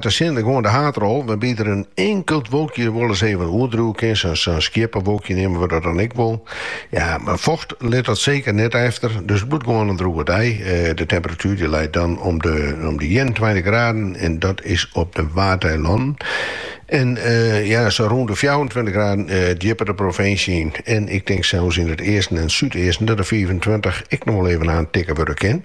De sinne goed de haadrol, wêrby't der in inkeld wolkje wolris even oerdriuwe kin, sa'n skieppewolkje neame we dat dan ek wol. Ja, mar focht lit dy seker net efter, dus it bliuwt gewoan in droege dei. De temperatuer dy leit dan om de ienentweintich graden en dat is op de Waadeilannen en ja, sa rûn de fjouwerentweintich graden djipper de provinsje yn. En ik tink sels yn it easten en súdeasten dat de fiifentweintich ek noch wol even aantikke wurde kin.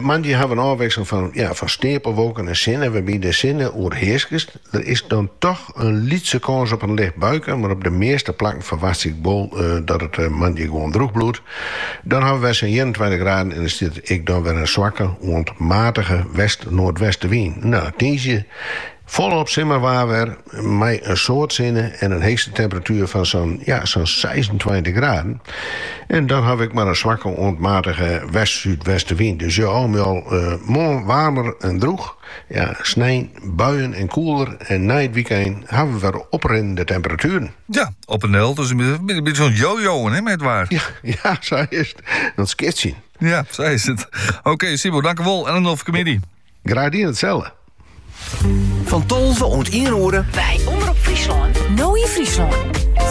Moandei hawwe we in ôfwikseling fan steapelwolken en sinne, wêrby't de sinne oerhearsket. Der is dan toch in lytse kâns op in licht buike, mar op de measte plakken ferwachtsje ik wol dat it moandei gewoan droech bliuwt. Dan hawwe we sa'n ienentweintich graden en der stiet ek dan wer in swakke oant matige west-noardwestewyn. Tiisdei Folop simmerwaar wer mei in soad sinne en in heechste temperatuer fan sa'n ja, sa'n seisentweintich graden. En dan ha we ek mar in swakke oant matige west-súdwestewyn. Dus jo, al mei al eh, moarn waarmer en droech. Ja, snein buien en koeler en nei it wykein hawwe we wer oprinnende temperatueren. Ja, op en del. Dus een beetje zo'n jojo, hè, met waar. Ja, ja, zo is het. Dat skitsje. Ja, zo is het. Oké, okay, Sibo, tankewol. En een of comedie. Graach dien, itselde. Fan tolve oant ien oere. By Omrop Fryslân. No yn Fryslân.